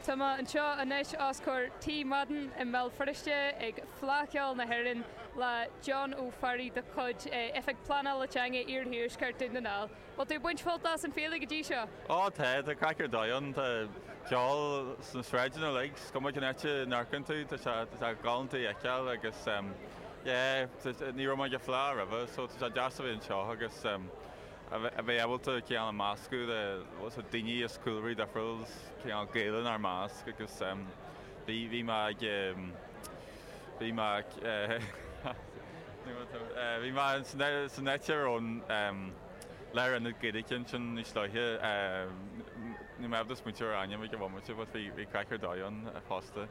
Tá mé anseo anois os comhair Tigh Madden i mBéal Feirste ag Fleadh Cheoil na hÉireann le John Ó Fearraigh de chuid Oifig Pleanála Teanga Iarthuaisceart Dún na nGall. Bhfuil tú ag baint sult as an fhéile go dtí seo? Ó tá, tá craic ar dóigh ann, tá ceol sna sráideanna uilig, is cuma cén áit a n-amharcann tú tá sé, tá sé galánta a fheiceáil agus yeah, ní raibh mé ag an Fhleadh roimhe so tá sé deas a bheith anseo agus. a bheith ábalta cineál ag meascadh le daoine as cúlraí difriúla agus cineál Gaeil in ár measc agus bhí mé ag bhí mé ag bhí mé san áit ar an lárionad Gaeilge ansin níos luaithe, níl mé ábalta smaointiú ar ainm ag an bhomaite but bhí bhí craic ar dóigh ann fosta.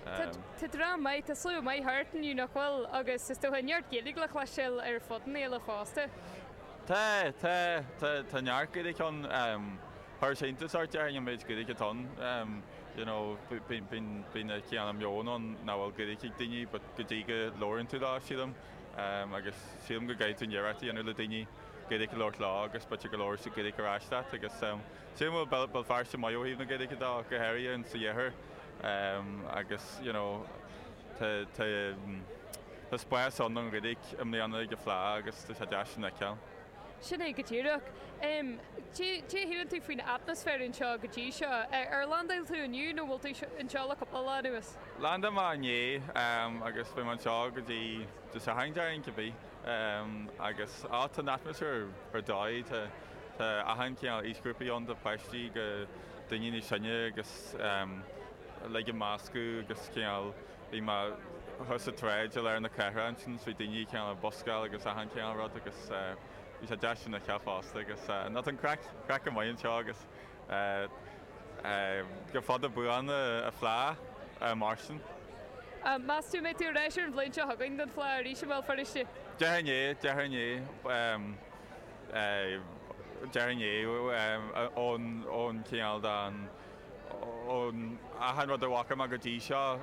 Tá dream maith, tá slua maith thart inniu nach bhfuil agus is dócha neart Gaeilge le cloisteáil ar fud na féile fosta. Tá, tá, tá, tá neart Gaeilge ann. Chuirfeadh sé iontas ort, déarfainn, an méid Gaeilge atá ann. You know, bíonn, bíonn, bíonn cineál an meon ann nach bhfuil Gaeilge ag daoine but go dtí go labhraíonn tú leo, sílim. Agus sílim go gcaithfidh tú an iarracht a dhéanamh le daoine Gaeilge a labhairt leo agus b'fhéidir go labhróidh siad Gaeilge ar ais leat. Agus sílim go bhfuil Béal Feirste maith ó thaobh na Gaeilge de, go háirithe ins an iarthar. Agus, you know. Tá spás ann don Ghaeilge i mbliana ag an Fhleadh agus tá sé deas sin a fheiceáil. Sin é go díreach. Caidé a shíleann tú faoin atmaisféar anseo go dtí seo? Ar landáil tú inniu nó bhfuil tú anseo le cúpla lá anuas? Landáil mé inné agus beidh mé anseo go dtí Dé Sathairn, déarfainn, cibé. Agus á, tá an atmaisféar ar dóigh. Tá achan chineál aoisghrúpaí ann, ó pháistí go daoine níos sine agus. Uilig ag meascadh agus cineál, bhí mé thíos an tsráid i lár na cathrach ansin, bhí daoine cineál ag buscáil agus achan chineál rud agus bhí sé deas sin a fheiceáil fosta agus no tá an craic, craic go maith anseo agus gura fada buan an Fhleadh mar sin. Meas tú go mbeidh tú ar ais ar an bhliain seo chugainn don Fhleadh arís i mBéal Feirste? Déarfainn é, déarfainn é, déarfainn é ón cineál de. Ón achan rud a bhfaca mé go dtí seo,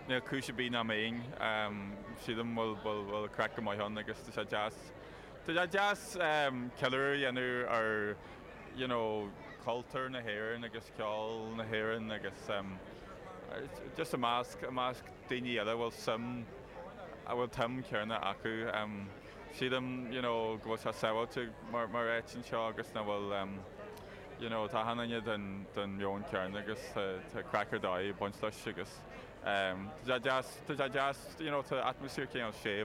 níl cúis ar bith nach mbeinn, sílim, bhfuil bhfuil craic go maith ann agus tá sé deas, tá sé deas ceiliúradh a dhéanamh ar you know cultúr na hÉireann agus ceol na hÉireann agus just i measc, i measc daoine eile a bhfuil suim, a bhfuil an tsuim chéanna acu. Sílim you know go bhfuil sé sábháilte mar áit anseo agus nach bhfuil, You know, tá achan nduine den mheon céanna agus tá craic ar dóigh ag baint leis agus tá sé deas, tá sé deas, you know, tá atmaisféar cineál séimh.